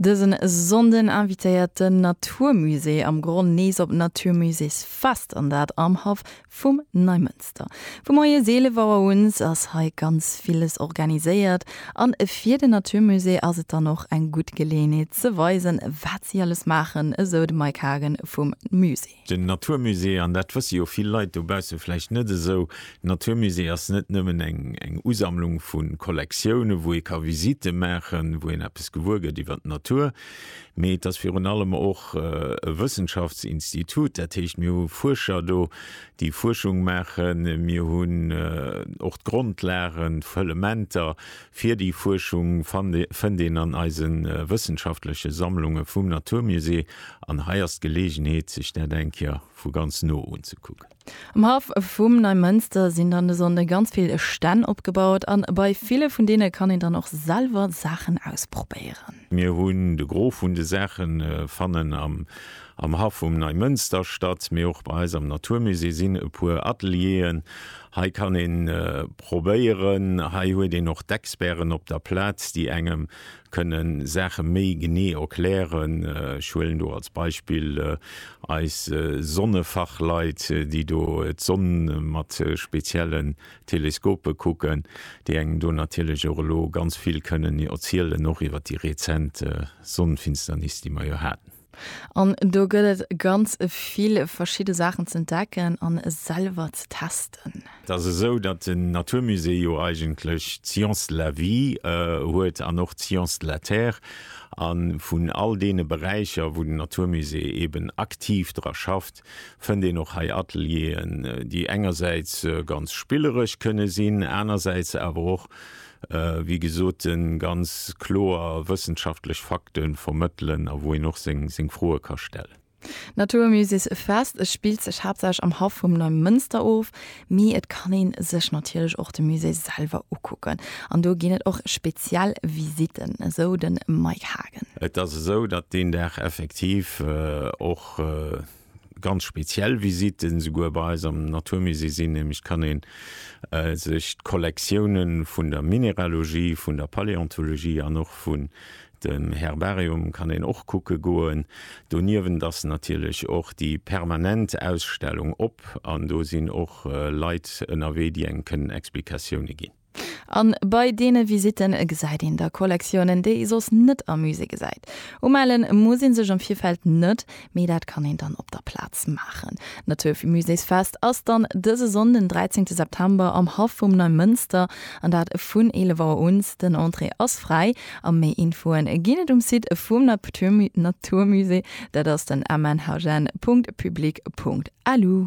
Dësen Sonnden invitéiert den Naturmusée am Gronn nees op d'Naturmuséesfest an dat am Haff vum Neimënster. Vu moies 11 Auer uns ass hei ganz villes organiséiert an fir den Naturmusée ass et dann och eng gutt Geleeënheet ze weisen wat si alles maachen, esou de Mike Hagen vum Musée. Den Natur Musée, an dat wësse jo vill Leit dobausse vläicht net esou, den Natur Musée ass net nëmmen eng Usammlung vu Kollektioune wou ee ka Visitte maachen, wou een eppes gewuer gëtt iwwer d'Natur, mee et ass virun allem och e Wëssenschaftsinstitut. Dat heescht mir hu Fuerscher do déi Fuerschung maachen, mir hunn och d'Grondlagen, d'Fëllementer Fir déi Fuerschung fënnt een an eise wëssenschaftleche Sammlunge vum Naturmusée, an hei ass d'Geleegenheet sech dat eng Kéier vu ganz no unzekucken. Am Haff vum Neimënster sinn dann de Sonnde ganz vill Stänn opgebaut an bei ville vun deene kann een dann och selwer Saachen ausprobéieren. Mir hunn de Gros vun de Saachen fannen am Am Haff um Neimënsterstadt, mee och bei eis am Naturmusée sinn e puer Atelieren. Hei kann een probéieren. Hei huet een och d'Experten op der Plaz, déi engem kënnen Saache méi genee erklären. Ech huelen do als Beispill eis Sonnefachleit, déi do d'Sonn mat speziellen Teleskope kucken, déi engem do natierlech och elo ganz vill kënnen erzielen, och iwwer déi rezent Sonnenfinsternis, déi mer jo haten. An do gëtt et ganz vill verschidde Saachen z'entdecken a selwer ze testen. Et ass esou, datt den Natur Musée jo eigentlech d'Science de la Vie huet an och d'Science de la Terre. A vun all deene Beräicher, wou den Natur Musée eeben aktiv dra schafft, fënnt een och hei Atelieren, déi engersäits ganz spilleresch kënne sinn, anersäits awer och wéi gesot, ganz kloer wëssenschaftlech Fakte vermëttelen a wou een och seng Froe ka stellen. D'Naturmuséesfest spillt sech haaptsächlech am Haff vum Neimënster of, mee et kann ee sech natierlech och de Musée selwer ukucken an do ginn et och speziell Visitten, esou de Mike Haagen. Et ass esou, datt deen Dag effektiv och ganz speziell Visiten souguer bei eis am Naturmusée sinn, nämlech kann een äh, sech d'Kollektiounen vun der Mineralogie, vun der Paläontologie an och vun dem Herbarium kann een och kucke goen. Doniewent ass natierlech och déi permanent Ausstellung op an do sinn och äh, Leit ënnerwee, déi engem kënnen Explikatioune ginn. An bei deene Visitten gesäit een da Kollektiounen, déi ee soss net am Musée gesäit. Umellen muss ee sech am Virfeld net, mee dat kann een dann op der Plaz maachen. D'Naturvue Muséesfest ass dann dëse Sonn den 13 September am Haff vum Neimënster an dat vun 11 Auer uns. Den Entrée ass fräi a méi Infoen ginn et um Site vum Naturmusée, dat ass den mnhn.public.lu.